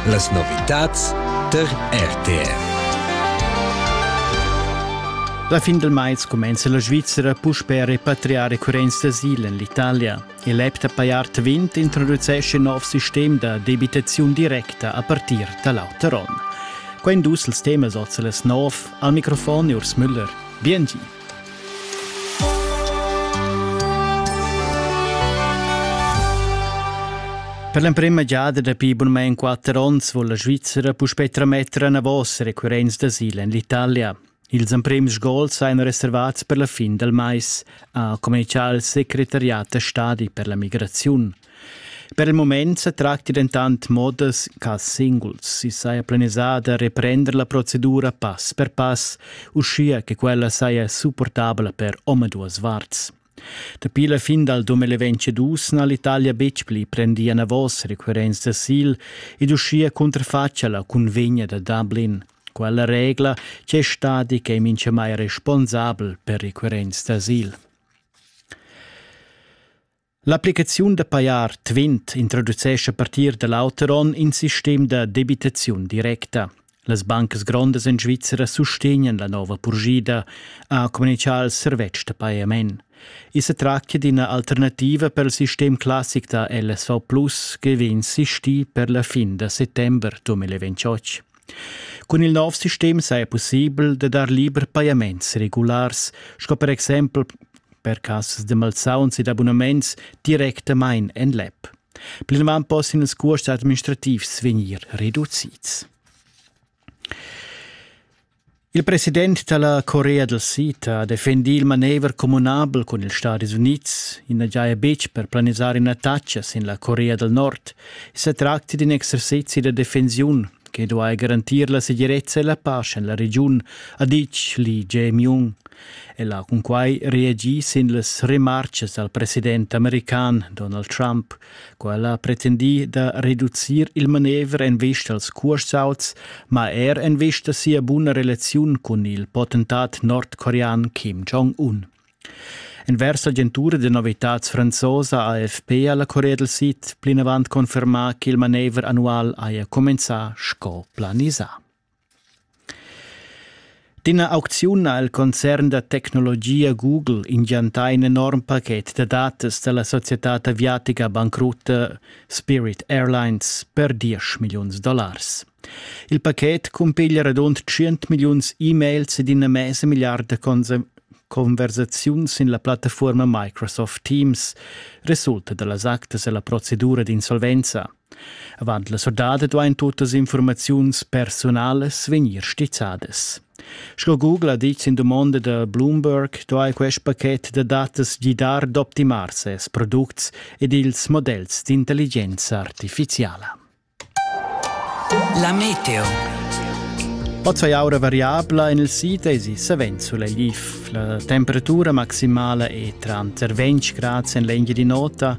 Las novitads tar RTR. La fin del mais comenza la Svizzera puspè a repatriar recurrents d'asil en l'Italia. Il app da Payart 20 introducesce nov sistem da debitaziun directa a partir da l'auter onn. Quai dus els temas oz las nov. Al microfon Urs Müller. Biengi. Per l'emprema giada dapi bunmein quatter onns vul la Svizzera puspei trametter anavos recurrents d'asil en l'Italia. Ils emprems gols ein reservats per la fin del mais, ha communicato il secretariat da stadi per la migrazione. Per il mument sa tracti dentant modas cas singuls. I saja planisà da reprender la procedura pass per pass, uschia che quella saja supportabla per omaduas varts. Dapi la fin dal 2022 n'ha l'Italia betg pli prendì anavos requirents d'asil ed uschia cunterfatga la cunvegna da Dublin. Quella regla c'è stati che è mintgamai responsabel per requirents d'asil. L'applicaziun da pajar tvint introducescha a partir da l'auter onn in sistem da debitaziun directa. Las bancas grondas en Svizra sustegnan la nova purschida, ha communitgà il servetsch da pajament. I sa tractia d'ina alternativa per il sistem classic da LSV Plus che vegn sistì per la fin da settember 2028. Cun il nov sistem saja pussibel da dar liber pajaments regulars, sco per exempel per cassas da malsauns ed abunaments directamain en l'app. Plinavant possian ils cuosts administrativs vegnir reducids. Il president da la Corea dal Sid ha defendì il manever communabel cun ils Stadis Unids. I na giaja betg per planisar in'attacca sin la Corea dal Nord. I sa tracti d'in exercizi da defensiun che duai garantir la segirezza e la pace en la regiun, ha ditg Lee Jae-myung. El ha cunquai reagì sin las remartgas dal president american Donald Trump, Quella ha pretendì da reducir il manever en vista als cursauts, ma er en vista sia buna relaziun cun il potentat nordcorean Kim Jong-un. Envers l'agentura de novitats franzosa AFP alla Corea del Sid plinavant confermà che il manever annual haja comenzà sco planisà. D'ina aucziun ha il concern da tecnologia Google ingiantà in enorm paket da datas da la societad aviatica bancrutta Spirit Airlines per diesch milliuns dollars. Il paket cumpiglia radund tschient milliuns e-mails ed ina mesa milliarda conversaziuns sin la plattafuorma Microsoft Teams resulta da las actas e la procedura d'insolvenza. Avant la surdada duain tuttas infurmaziuns persunalas vegnir stizzadas. Sco Google ha ditg sin dumonda da Bloomberg, duai quest pachet da datas gidar d'optimar ses products ed ils modells d'intelligenza artifiziala. La meteo. Oz è aura variabla en il sit e si savens sulegl. La temperatura maximala è tranter 20 gradi en l'engine di nota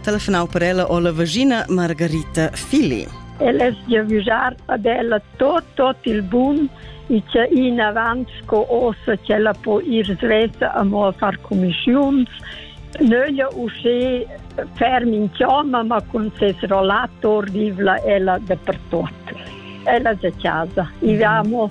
telefonau per ella o la vagina Margarita Fili. Ella es gia vigiar ad ella tot tot il bun e che in avant sco ossa che la po ir svesa a mo a far commissiuns. Nöglia usce ferm in chioma ma con ses rollator vivla ella dapertot. Ella è a casa. E mm. vamo